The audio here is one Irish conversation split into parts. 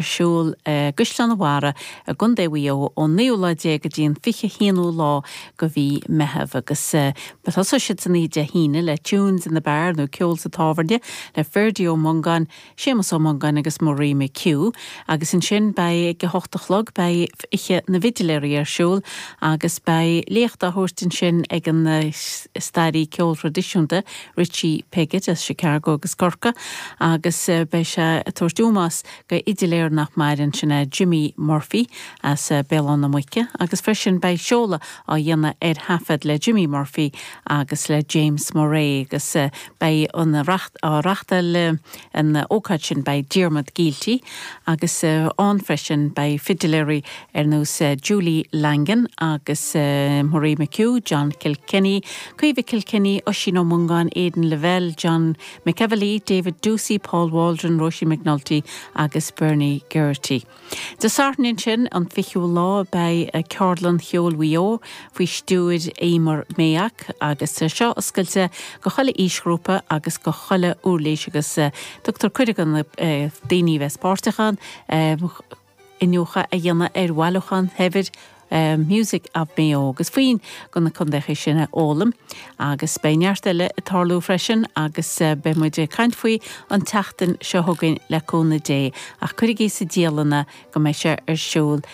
ar siúl i gCaisleán an Bharraigh i gContae Mhaigh Eo ón naoú lá déag go dtí an fiche haonú lá go mhí Meitheamh agus beidh tosóidh siad san oíche Dé hAoine le Tunes in the Bar nó Ceol sa Tábhairne le Ferdie Ó Mongáin, Séamus Ó Mongáin agus Marie McHugh agus ansin beidh ag a hocht a chlog beidh Oíche na bhFidiléirí ar siúl agus beidh léacht á thabhairt ansin ag an staraí ceoil thraidisiúnta, Richie Piggott as Chicago agus Corcaigh agus beidh sé ag tabhairt ómós go fhidiléir nach maireann, sin é Jimmy Murphy as Béal Átha na Muice agus freisin beidh seoladh á dhéanamh ar thaifead le Jimmy Murphy agus le James Murray agus beidh ag reachtáil an ócáid sin beidh Diarmuid Gielty agus ann freisin beidh fidiléirí ar nós Julie Langan agus Marie McHugh, John Kilkenny, Caoimhe Kilkenny, Oisín Ó Mongáin, Aidan Lavelle, John McEvilly, David Doocey, Paul Waldron, Róisín McNulty agus Bernie Geraghty. Dé Sathairn ansin, an 20ú lá, beidh Ceardlann Cheoil Mhaigh Eo faoi stiúir Emer Mayock agus tá seo oscailte go chuile aoisghrúpa agus go chuile uirlís agus tugtar cuireadh do na daoine a bheith páirteach ann. iniúchadh a dhéanamh ar bhailiúchán shaibhir Music of Mayo agus foinn go na contaetha sin a fhoghlaim agus beidh neart eile ag tarlú freisin agus beidh muid ag caint faoi an tseachtain seo chugainn le cúnamh Dé ach cuirigí sa dialann é go mbeidh sé ar siúl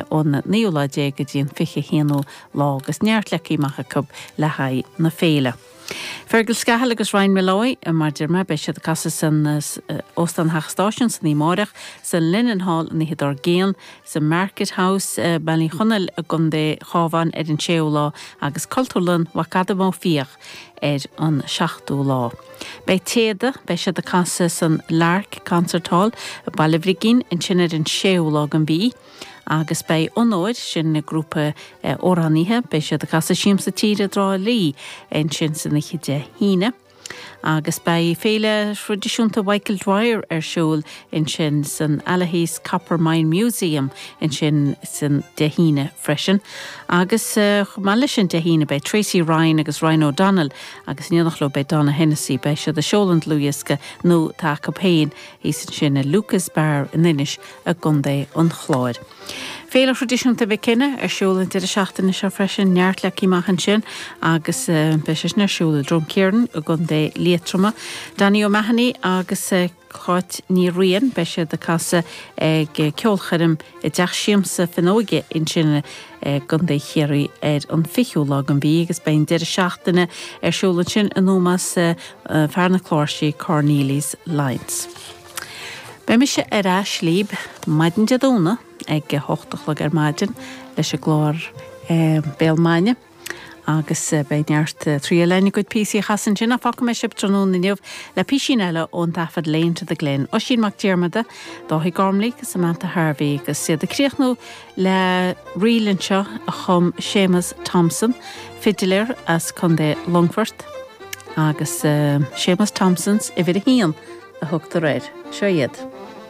ón naoú lá déag go dtí an fiche haonú lá agus neart leagtha amach acu le haghaidh na féile. Fergal Scahill agus Ryan Molloy, mar a deir muid, beidh siad ag casadh san Óstán Theach Stáisiún san oíche amáireach, san Linenhall an oíche dár gcionn, san Market House, Baile Uí Chonaill i gContae Chabháin ar an 6ú lá agus Cultúrlann Mhac Adaim Ó Fiaich ar an 7ú lá. Beidh Téada, beidh siad ag casadh san Lark Concert Hall, Baile Bhrigín, ansin ar an 6ú lá den mhí. Agus beidh Onóir, sin an grúpa amhránaithe, beidh siad ag casadh i Siamsa Tíre i dTrá Lí ansin san oíche Dé hAoine. Agus beidh Féile Thraidisiúnta Mhichael Dwyer ar siúl ansin san Allihies Copper Mine Museum ansin san Dé hAoine freisin. Agus chomh maith leis sin Dé hAoine beidh Tracy Ryan agus Ryan O'Donnell agus in éineacht leo beidh Donogh Hennessy, beidh siad ag seoladh an dlúthdhiosca nua atá acu féin thíos ansin i Lucas Bar in Inis i gContae an Chláir. Féile thraidisiúnta Mhic Cionnaith ar siúl an deireadh seachtaine seo freisin. Neart leagtha amach ansin agus beidh sé sin ar siúl i Drumkeeran i gContae Liatroma. Danny O'Mahony agus Cáit Ní Riain, beidh siad ag casadh ag ceolchoirm i dTeach Siamsa Finuge ansin i gContae Chiarraí ar an 20ú lá den mhí agus beidh an deireadh seachtaine ar siúl ansin in ómós fear na cláirsí Cornelius Lyons. Beidh mise ar ais libh maidin Dé Domhnaigh ag a hocht a chlog ar maidin leis an gclár Béal Maidine agus beidh neart triail lena gcuid píosaí a chasadh ansin ach fágfaidh mé sibh tráthnóna inniu le písín eile ón taifead Lane to the Glen, Oisín Mac Diarmada, Daithí Gormley agus Samantha Harvey agus iad ag críochnú le ríl anseo a chum Séamus Thompson, fidiléir as Contae Longfort, agus Seamus Thompson's uimhir a haon a thugtar air. Seo iad.